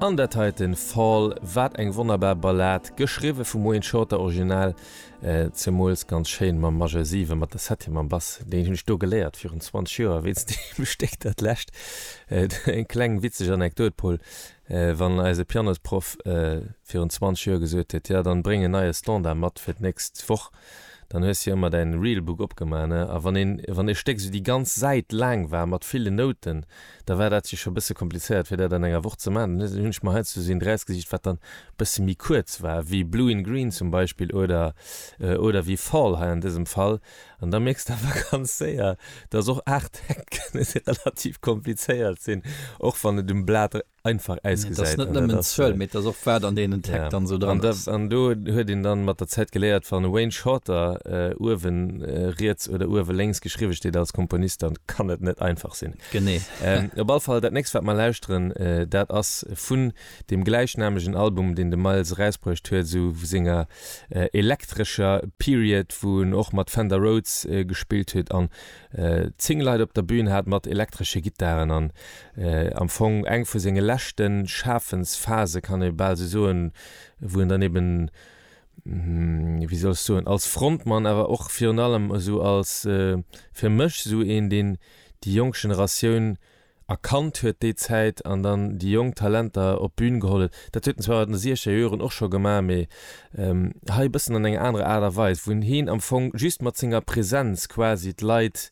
An dat heiten Fall, wat eng wonnerbar Ballad, geschriwwe vum Wayne Shorter, original zemools ganz schéin mam Majeur 7, mat der Septième am Bass, deen hunn ech do geléiert virun 20 Joer wéinst deem Stéck, dat lescht. Eng kleng witzeg Anekdot, Paul, wann eise Pianosproff virun 20 Joer gesot huet, jo, dann bréng en neie Standard mat fir d'nächst Woch, Dann hues jo emmer däin Realbook opgemaach, ne? A wann een, wann e Stéck sou déi ganz Säit laang war mat villen Nouten, da war dat jo scho bësse komplizéiert fir dat an enger Woch ze maachen. Dann hunn ech mer heiansdo sou een drausgesicht wat dann bësse méi kuerz war, wéi Blue in Green zum Beispill oder, oder wéi Fall hei an dësem Fall. An da mierks de awer ganz séier, dass och 8 Täkt kënne relativ komplizéiert sinn, och wann et um Blat. einfach ausgesäit. Dat ass net nëmmen d'Zuel, mee et ass och wat an deenen Track dann esou dran ass. An do huet een dann mat der Zäit geléiert, wann Wayne Shorter uewe riets oder uewe lénks geschriwwe steet als Komponist, dann kann et net einfach sinn. Genee. Op all Fall, dat nächst wat mer lauschteren, dat ass vun dem gläichnamegen Album, deen de Miles erausbruecht huet, esou senger elektrescher Period, wou en och mat Fender Rhodes gespillt huet an Zéng Leit op der Bühn hat, mat elektresche Gittaren an am Fong eng vu senge leschte Schafensphase, kann ee bal esou soen, wou en dann eben, wéi soll ech soen, als Frontmann, awer och virun allem esou als, fir mech, esou een, deen déi jonk Generatioun erkannt huet déi Zäit an dann déi jonk Talenter op d'Bün geholl huet. Dat huet en zwar an de siechzeger Joren och scho gemaach, mee hei e bëssen an enger anerer Aart a Weis, wou hien am Fong just mat senger Presenz quasi d'Leit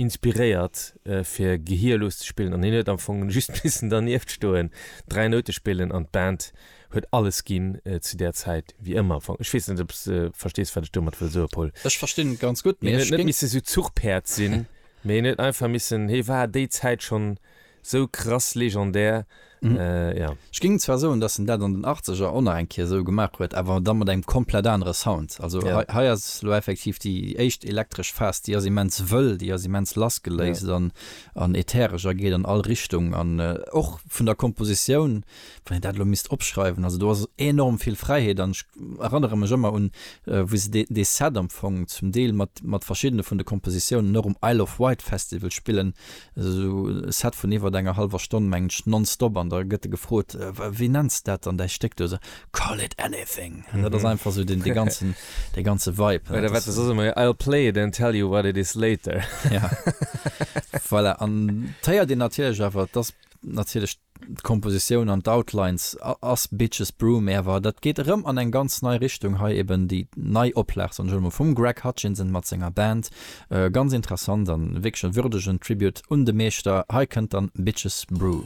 inspiréiert fir gehierlos ze spillen an hien huet am Fong just missen dernieft stoen, dräi Noute spillen an d'Band huet alles ginn zu där Zäit, wéi ëmmer am Fong. Ech weess net, ob s de verstees, wat ech domat wëll soen, Paul. Ech verstinn et ganz gutt, mee ech géing. Hien huet net missen esou Zuchpäerd sinn. Mee en huet einfach missen, hie war déi Zäit schonn sou krass legendär, jo. Ech géing zwar soen, dass en dat an den Achtzeger och nach eng Kéier sou gemaach huet, awer da mat engem komplett anere Sound. Also hei, hei ass elo effektiv déi éischt elektresch Phas, déi ass immens wëll, déi ass immens lassgeléist an ätheresch a geet an all Richtung an och vun der Kompositioun. wann een dat elo misst opschreiwen, also do ass enorm vill Fräiheet an ech erannere mech ëmmer un wéi se dee dee Set am Fong zum Deel mat mat verschiddene vun de Kompositiounen och um Isle of Wight Festival spillen, esou e Set vun iwwert enger hallwer Stonn mengen ech nonstop an da gëtt de gefrot, wéi nenns de dat dann däi Stéck do? Sou, Call it anything! An dat ass einfach esou dee dee ganzen dee ganze Vibe. Oder wat se soss ëmmer, I'll play it and tell you what it is later. Voilà, an d'féiert een natierlech awer, et ass natierlech. D'Kompositioun an d'Outlines ass Bitches Brew mee awer dat geet erëm an eng ganz nei Richtung. Hei eben déi nei Oplag, soen ech elo mol, vum Greg Hutchinson mat senger Band. Ganz interessant an wierklech e würdegen Tribute un de Meeschter. Hei kënnt dann Bitches Brew.